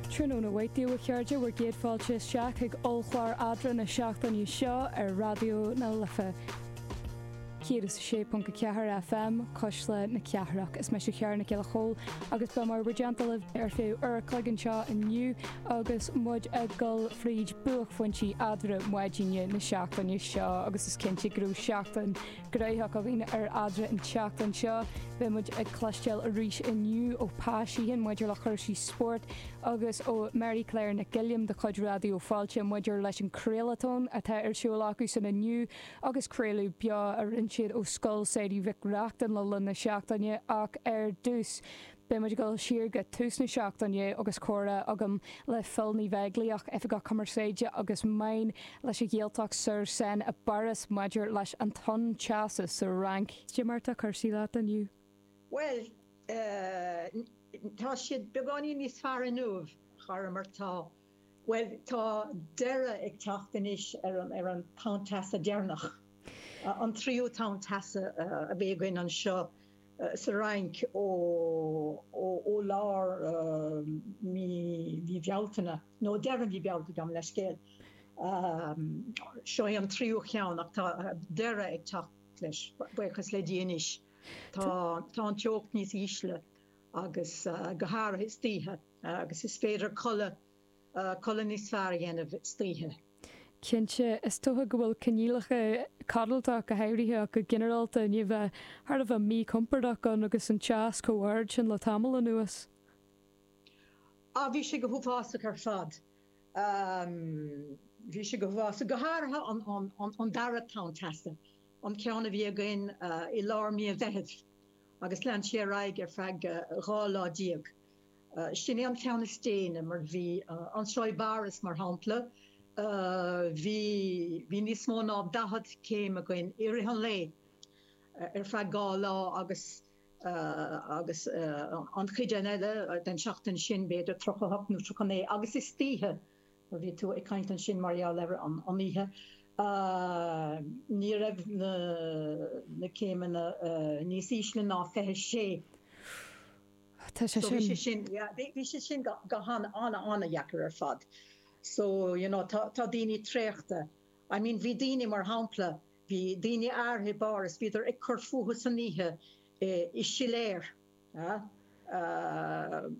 Tráthnóna maith daoibh a chairde bhur gcéad fáilte isteach ag ollchlár Eadra na seachtaine seo ar Raidió na Life 106.4 FM cuisle na cathrach. Is mise Ciara Nic Giolla Chomhaill agus beidh mé i bhur dteannta libh ar feadh uair an chloig anseo inniu agus muid ag dul fríd buaicphointí Eadra maidine na seachtaine seo agus is cinnte go raibh seachtain Ghnóthach againn ar Eadra an tseachtain seo. Beidh muid ag cloisteáil arís inniu ó Pa Sheehan maidir le cúrsaí spóirt agus ó Mary Claire Nic Uilliam de chuid Raidió Fáilte maidir leis an craolatón atá ar siúl acusan inniu agus craoladh beo a rinne siad ó Scoil Samhraidh Mhic Reachtain le linn na seachtaine ach ar dtús Beidh muid ag dul siar go tús na seachtaine agus comhrá agam le Fil Uí Bheaglaoich, Oifigeach Cumarsáide agus Meáin leis an Ghaeltacht-sur-Seine i bPáras maidir leis an tonn teasa sa Fhrainc. Cad é mar atá cúrsaí leat inniu? Bhuel, tá siad beagáinín níos fearr inniu thar mar atá. Bhfuil, tá deireadh ag teacht anois ar an tonn teasa deireanach, an tríú tonn teasa a bhí againn anseo sa Fhrainc ó lár mhí Bealtaine, nó, deireadh mhí Bealtaine, gabh mo leithscéal. Seo é an tríú cheann ach tá deireadh ag teacht leis, buíochas le Dia anois. Tá an teocht níos ísle agus go háirithe istoíche. Agus is féidir codladh, codladh níos fearr a dhéanamh istoíche. Cinnte, is dócha go bhfuil coinníollacha codlata, go háirithe, ach go ginearálta, i ndiaidh a bheith thar a bheith míchompordach ann agus an teas chomh ard sin le tamall anuas. Á, bhí sé go huafásach ar fad. Bhí sé go huafásach. Go háirithe an dara tonn teasa, an ceann a bhí againn i lár mí an Mheithimh agus lean sé ar aghaidh ar feadh dhá lá déag. Sin é an ceann is déine, mar bhí anseo i bPáras mar shampla, bhí bhí níos mó ná daichead céim againn i rith an lae ar feadh dhá lá agus agus an chuid eile den seachtain sin b'fhéidir tríocha a hocht nó tríocha a naoi agus istoíche mar bhí tú ag caint ansin mar gheall ar an oíche ní raibh na na céimeanna níos ísle ná fiche sé. Tá sé sin. Bhí sé sin, yeah, bhí sé sin go han-, an-, an-deacair ar fad. So, you know, tá daoine traochta. I mean, bhí daoine, mar shampla, bhí daoine áirithe i bPáras, bhíodar ag cur fúthu san oíche i siléir, yeah,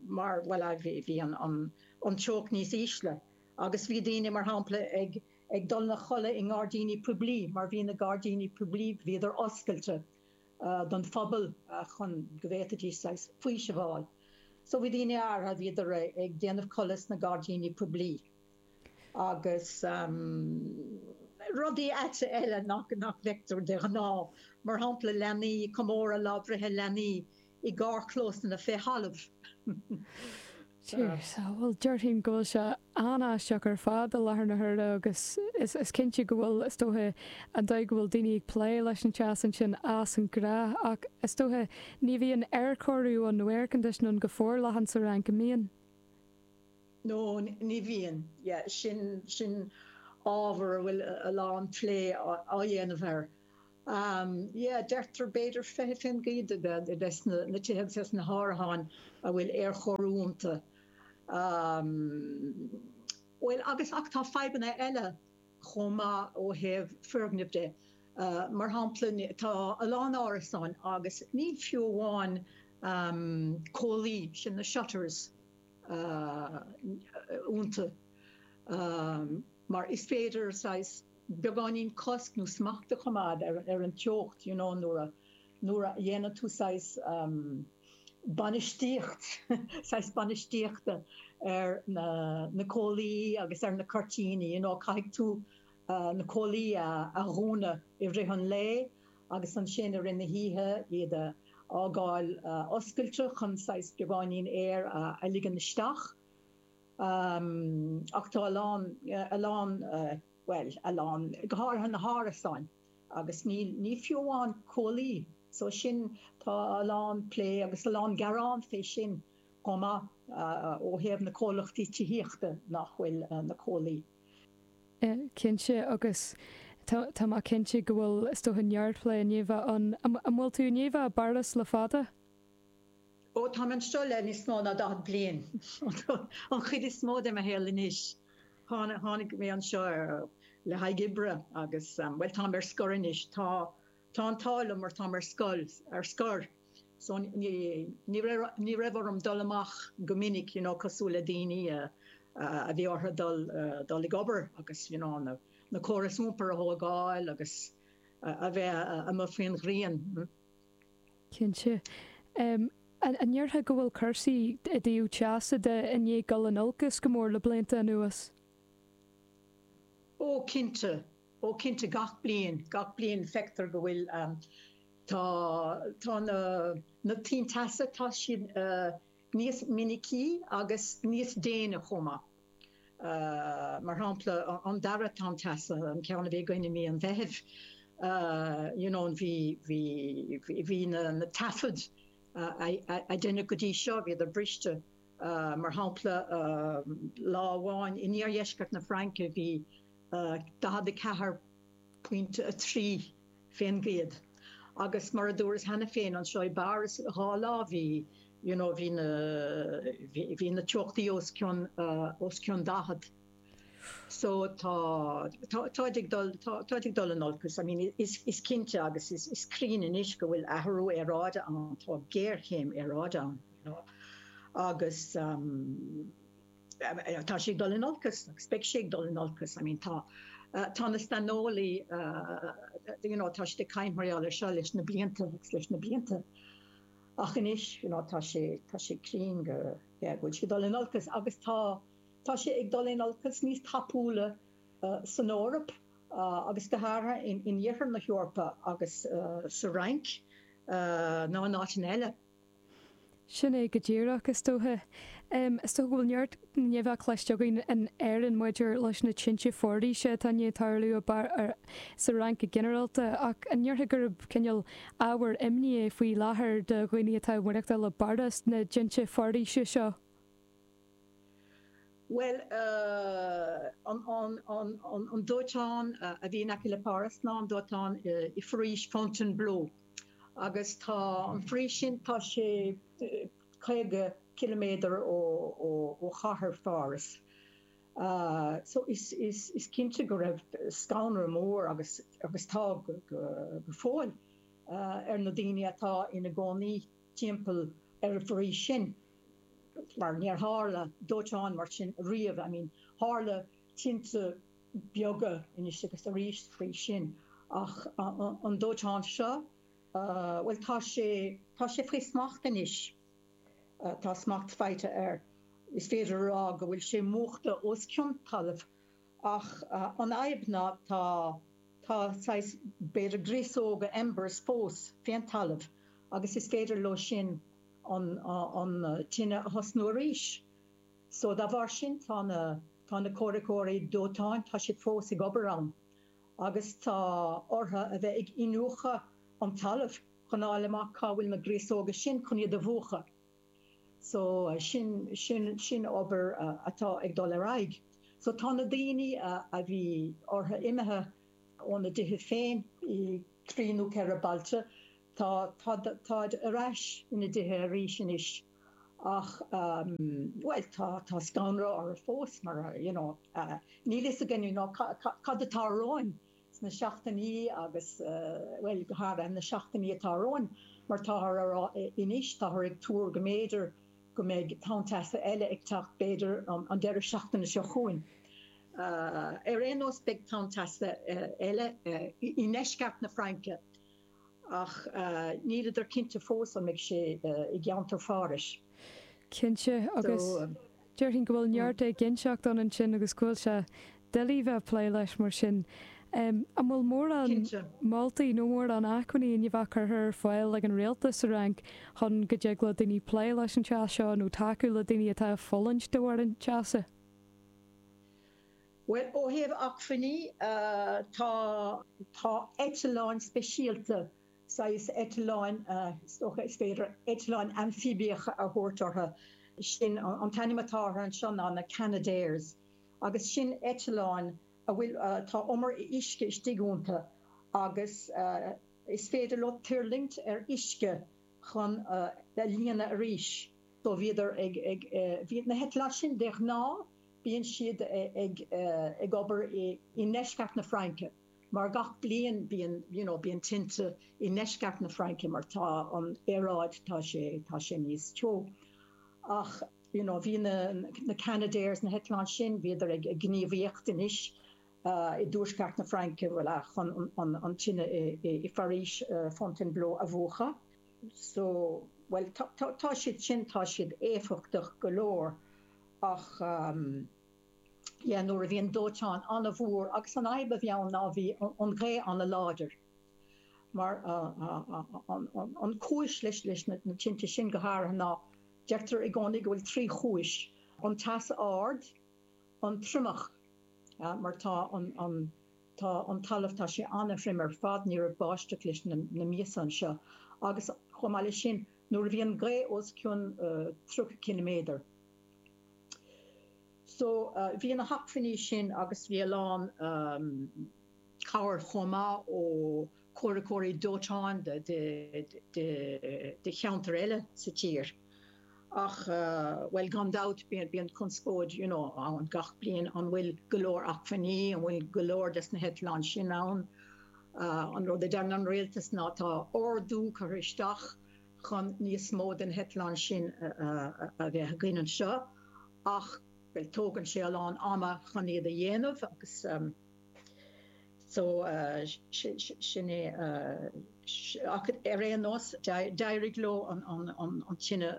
mar, bhuel, bhí an teocht níos ísle agus bhí daoine, mar shampla, ag dul a chodladh i ngairdíní poiblí mar bhí na gairdíní poiblí, bhíodar oscailte. don phobal chun go bhféadfaidís saghas faoisimh a fháil. So bhí daoine áirithe, bhíodar ag déanamh codladh sna gairdíní poiblí agus rudaí áite eile nach bhfeictear de ghnáth, mar shampla leanaí, comóradh lá breithe leanaí i gcarrchlósanna fé thalamh. Bhuel, déarfainn go bhfuil sé an-aisteach ar fad i láthair na huaire agus is cinnte go bhfuil, is dóiche, an dóigh go bhfuil daoine ag plé leis an teas ansin as an ngnách ach is dóiche ní bhíonn aerchóiriú ann nó air conditioning ann go forleathan sa Fhrainc, an mbíonn? No, ní bhíonn. Yeah, sin, sin ábhar a bhfuil a lán plé á dhéanamh air Um, yeah, deirtear b'fhéidir fiche fén gcéad de bheith, de bheith sna, na tithe agus sna hárasáin a bhfuil aerchóiriú ionta. Um, bhfuil agus, ach tá fadhbanna eile chomh maith ó thaobh foirgneamh de. Uh, mar shampla tá a lán árasáin agus níl fiú amháin, um, comhlaí, sin na shutters, uh, ionta. Um. mar is féidir saghas beagáinín cosc nó smacht a choimeád ar an teocht you know nuair a, nuair a dhéanann tú saghas ehm bainistíocht, saghas bainistíochta ar na, na comhlaí agus ar na cuirtíní you know caithfidh tú na comhlaí a, a dhúnadh i rith an lae agus ansin i rith na hoíche iad a fhágáil oscailte chun saghas beagáinín aer a ligean isteach. ach tá a lán, a lán, bhuel, a lán, go háirithe na hárasáin agus níl, níl fiú amháin comhlaí, so sin, tá a lán plé agus a lán gearán fé sin chomh maith ó thaobh na comhlachtaí tithíochta nach bhfuil na comhlaí. Cinnte agus tá, tá mé cinnte go bhfuil, is dócha neart plé ina leith ann. An bhfuil tú i do chónaí i bPáras le fada? Ó, táim anseo le níos mó ná daichead bliain, an chuid is mó de mo shaol anois. Tháinig mé anseo le haghaidh oibre agus, bhuel, táim ar scor anois. Tá an t-ádh liom mar táim ar scoil, ar scor, so ní raibh orm dul amach go minic, you know, cosúil le daoine a bhí orthu dul ag obair agus, you know, na córais iompair a thógáil agus a bheith amuigh faoin ngrian. Cinnte. An ndéarfá go bhfuil cúrsaí i dtaobh teasa de i ndiaidh dul in olcas go mór le blianta anuas? Ó, cinnte. Ó, cinnte. Gach bliain. Gach bliain feictear go bhfuil, tá, tá na, na tonnta teasa, tá siad, níos minicí agus níos déine chomh maith, mar shampla an dara tonn teasa, an ceann a bhí againn i mí an Mheithimh, you know, bhí, bhí, bhí na taifid a deineadh go dtí seo, bhíodar briste, mar shampla lá amháin in iardheisceart na Fraince bhí 44, pointe 3, fén gcéad. Agus mar a dúras cheana féin anseo, i bPáras dhá lá bhí, you know, bhí na, bhí na teochtaí os cionn, os cionn 40. So tá, tá, táid ag dul, tá, táid ag dul in olcas. I mean, is, is cinnte agus is, is cinnte anois go bhfuil athrú aeráide ann, tá géarchéim aeráide ann, you know, agus, Tá sé ag dul in olcas agus beidh sé ag dul in olcas. I mean tá tá na saineolaí you know tá siad ag cnáimhseáil air seo leis na blianta agus leis na blianta ach anois you know tá sé tá sé cruinn go yeah go bhfuil sé ag dul in olcas agus tá tá sé ag dul in olcas níos tapúla san Eoraip agus go háirithe in iarthar na hEorpa agus sa Fhrainc ná in áiteanna eile. Sin é go díreach, is dócha. Is dócha go bhfuil neart nuachta cloiste againn in Éirinn maidir leis na tinte foraoise atá i ndiaidh tarlú sa Fhrainc go ginearálta, ach an ndéarfá gurb cineál ábhar imní é faoi láthair do dhaoine atá ag maireachtáil i bPáras, na tinte foraoise seo? Bhuel, an dóiteán a bhí in aice le Páras ná an dóiteán i bhForaois Fontainebleau, agus tá an fhoraois sin, tá sé caoga ciliméadar ó chathair Pháras. So, is cinnte go raibh scanradh mór, agus tá go fóill, ar na daoine atá ina gcónaí. timpeall ar an bhforaois sin mar níor tharla dóiteán mar sin riamh, I mean tharla tinte beaga anois agus arís ó shin ach an dóiteán seo, bhuel tá sé, tá sé faoi smacht anois, tá smacht faighte air, is féidir a rá go bhfuil sé múchta os cionn talaimh. Ach an fhadhb ná tá, tá saghas, b'fhéidir, gríosóga, embers, fós fén talamh agus is féidir leo sin an, an tine a thosnú arís. So dá bharr sin tá na, tá na comhraiceoirí dóiteáin, tá siad fós ag obair ann agus tá orthu a bheith ag iniúchadh an talaimh chun fháil amach cá bhfuil na gríosóga sin chun iad a mhúchadh. So, sin, sin, sin obair atá ag dul ar aghaidh. So, tá na daoine a, a bhí orthu imithe óna dtithe féin i dtrí nó ceithre bailte, tá, tá, táid ar ais ina dtithe arís anois ach, bhuel, tá, tá scanradh orthu fós mar, you know, níl a fhios againne, you know, cad, cad atá romhainn. na seachtainí agus, bhuel, go háirithe na seachtainí atá romhainn, mar táthar a rá anois, táthar ag tuar go mb'fhéidir go mbeidh tonn teasa eile ag teacht, b'fhéidir an deireadh seachtaine seo chugainn. Ar aon nós, beidh tonn teasa eile i ndeisceart na Fraince ach níltear cinnte fós an mbeidh sé i gceantar Phárais. Cinnte, agus déarfainn go bhfuil neart éiginnteacht ann ansin agus go bhfuil sé doiligh bheith ag plé leis mar sin. An bhfuil mórán moltaí nó mórán acmhainní amach curtha ar fáil ag an Rialtas sa Fhrainc chun go dtig le daoine plé leis an teas seo nó tacú le daoine atá ag fulaingt de bharr an teasa? Bhuel, ó thaobh acmhainní, tá. Tá eitleáin speisialta, saghas eitleáin, is dócha, is féidir eitleáin amfaibiacha a thabhairt orthu, sin an t-ainm atá orthu anseo na, na Canadairs, agus sin eitleáin a bhfuil, tá umar uisce istigh iontu agus is féidir leo tuirlingt ar uisce chun é a líonadh arís. So bhíodar ag, bhí na heitleáin sin de ghnáth Bíonn siad ag obair i ndeisceart na Fraince mar gach bliain bíonn you know bíonn tinte i ndeisceart na Fraince mar tá an aeráid tá sé tá sé níos teo ach you know bhí na na Canadairs na heitleáin sin bhíodar ag gníomhaíocht anois i dtuaisceart na Fraince bhuel chun an an tine i bhForaois Fontainebleau a mhúchadh so bhuel tá tá siad sin tá siad éifeachtach go leor ach yeah nuair a bhí an dóiteán an-mhór agus an fhadhb a bhí ann ná bhí an ghaoth an-láidir mar an cúis leis na tinte sin go háirithe ná deirtear i gcónaí go bhfuil trí chúis an teas ard, an triomach mar tá. Tá an talamh, tá sé ana-thrim ar fad, ní raibh báisteach leis na míosa anseo agus chomh maith leis sin nuair a bhí an ghaoth os cionn 30 ciliméadar so bhí na hacmhainní sin agus bhí a lán cabhair chomh maith ó comhraiceoirí dóiteáin do cheantair eile sa tír ach bhuel gan dabht bíonn conspóid you know ann gach bliain, an bhfuil go leor acmhainní, an bhfuil go leor des na heitleáin sin ann, an rud a deireann an Rialtas ná tá ordú curtha isteach chun níos mó de na heitleáin sin a bheith againn anseo ach bhuel tógann sé a lán ama chun iad a dhéanamh agus. so sin é ach ar aon nós d'éirigh leo an tine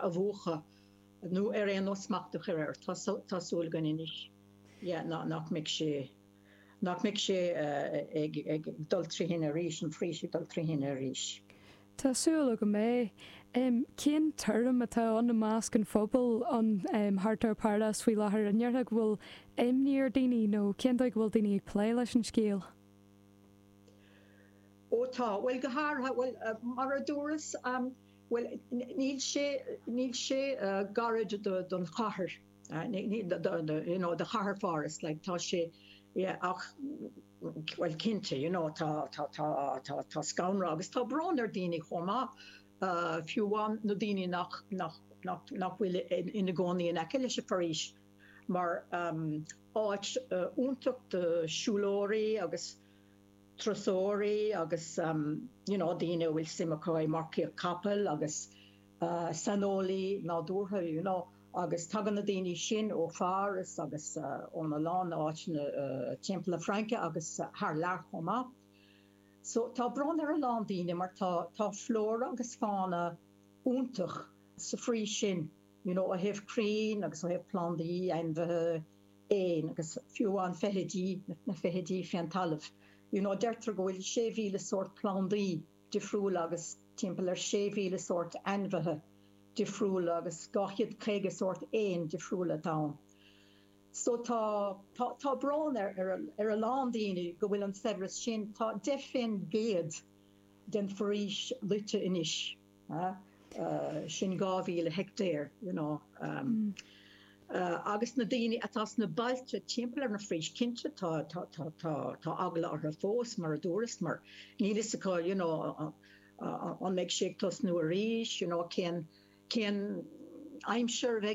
a mhúchadh nó ar aon nós smacht a chur air, tá súil againn anois yeah nach mbeidh sé, nach mbeidh sé ag dul trí thine arís, an fhoraois ag dul trí thine arís. Tá súil agam é. Cén tuairim atá ann i measc an phobail, thart ar Pháras faoi láthair? An ndéarfá go bhfuil imní ar daoine nó cén dóigh go bhfuil daoine ag plé leis an scéal? Ó tá. Bhuel go háirithe, bhuel mar a dúras, bhuel níl sé, níl sé gairid don chathair, you know, do chathair Pháras, like tá sé, yeah, ach, Bhuel, cinnte, you know, tá, tá, tá, tá, tá scanradh agus tá brón ar daoine chomh maith, fiú amháin na daoine nach, nach, nach, nach bhfuil ina gcónaí in aice leis an bhforaois mar is áit iontach do siúlóirí agus turasóirí agus, you know, daoine a bhfuil suim acu i marcaíocht capaill agus. saineolaí nádúrtha you know agus tagann na daoine sin ó Pháras agus ó a lán áiteanna timpeall na Fraince agus thar lear chomh maith so tá brón ar a lán daoine mar tá tá flóra agus fána iontach sa bhforaois sin you know ó thaobh crainn agus ó thaobh plandaí, ainmhithe, éin agus fiú amháin feithidí na feithidí fé an talamh you know deirtear go bhfuil 6,000 sórt plandaí difriúla agus timpeall ar 6,000 sórt ainmhithe difriúla agus 250 sórt éin difriúla atá ann. So tá, tá, tá brón ar, ar, ar a lán daoine go bhfuil an saibhreas sin, tá 10 fén gcéad den fhoraois loite anois, eh, sin 2,000 heictéar, you know, em. agus na daoine atá sna bailte timpeall ar an bhforaois, cinnte, tá, tá, tá, tá, tá eagla orthu fós, mar a dúras, mar níl fhios acu, you know, an mbeidh sé ag tosnú arís, you know, cén, cén aimsir a bheidh